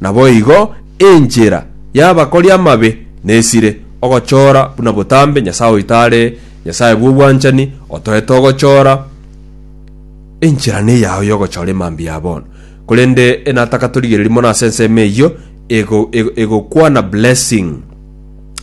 Naboigo enchera y'abakori amabe nesire, ogochora buna botambe Nyasae oito are Nyasae bw'obwanchani, otoete ogochora. Enchera neyao y'ogochora emambia ya bono. Korende enataka torigererie mono ase ensemo eyio, ego, ego, egokwana blessing.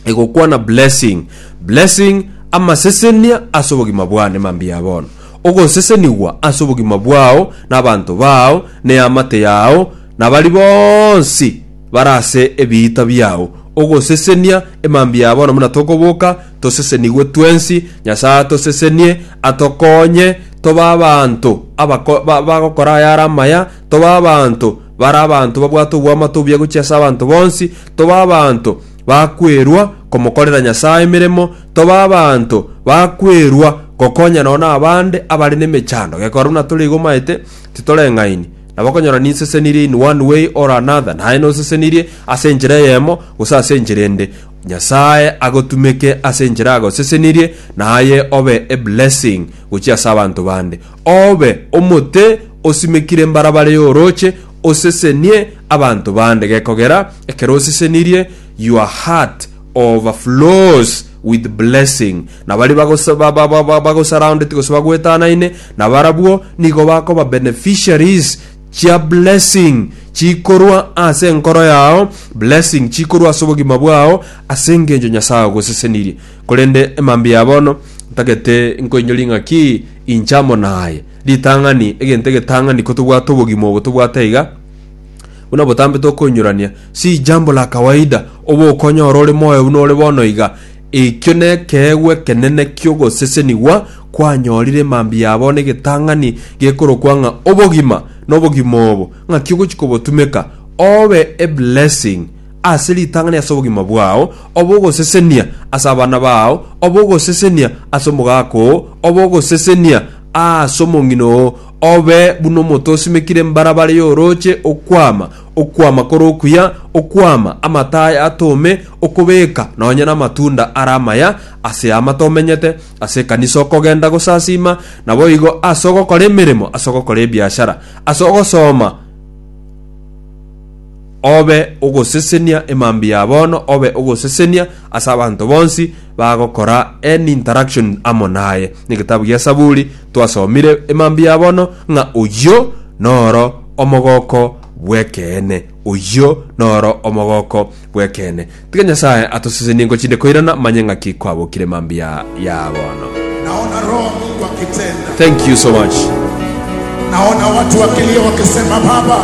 Egokwana blessing. Blessing, amasesenia ase obogima bwane mambia ya bono. Ogosesenigwa ase obogima bwao, nabanto bao, neamate yao, na baria bonsi bare ase ebiita biao, ogosesenia emambia ya bono buna tokoboka, tosesenigwe twensi, Nyasae atosesenie, atokonye tobe abanto abako- ba- bagokora ayare amaya, tobe abanto bare abanto babwate oboamate obuya gochia ase abanto bonsi, tobe abanto bakwerwa komokorera Nyasae emeremo, tobe abanto bakwerwa gokonya nonya nabande abare nemechando, gekogera buna tore igo omaete, titoreng'aini. Nabo okonyora ninsesenirie in one way or another, naye nosesenirie ase enchera eyemo gose ase enchera ende, Nyasae agotumeke ase enchera agosesenirie, naye obe a blessing gochia ase abanto bande. Obe omote osimekire mbarabara y'orooche, osesenie abanto bande gekogera ekero osesenirie, your heart overflows with blessing. na baria bagosa- ba- ba- ba- ba- bagosurrounded gose bagwetanaine nabarabwo nigo bakoba beneficiaries chia blessing chikorwa ase enkoro yao blessing chikorwa ase obogima bwao ase engencho nyasaye ogosesenirie korende emambia ya bono ntagete nkoinyori ng'aki inche amo naye ritang'ani egento egetang'ani kotobwate obogima obo tobwate iga buna botambe tokoinyurania si jambo la kawaida oba okonyora ore moyo buna ore bono iga Ekio nekeegwa ekenene ki'ogosesenigwa kwanyorire mambia abo negetang'ani gekorokwa ng'a obogima, na obogima obo ng'aki ogochia kobotumeka obe eblessing ase ritang'ani ase obogima bwao obe ogosesenia ase abana bao obe ogosesenia ase omogaka oo obe ogosesenia ase omong'ina oo obe buna omoto osimekire mbarabara y'oroche okwama Okwama kore okuya, okwama amato aya atome, okobeka nonye namatunda are amaya ase ama tomenyete, ase ekanisa okogenda gosasiima, naboigo ase ogokora emeremo, ase ogokora ebiashara, ase ogosoma obe ogosesenia emambia ya bono, obe ogosesenia ase abanto bonsi, bagokora any interaction amo naye. Negetabu gia Esaburi twasomire emambia ya bono ng'a oyio noro omogoko bw'ekeene. Oyio noro omogoko bw'ekeene. Tiga Nyasae atosesenie ngochinde koirana manye ng'aki kwabokire emambia ya bono. Naona Roho wa Mungu akitenda. Thank you so much. Naona watu wakilia wakisema, Baba,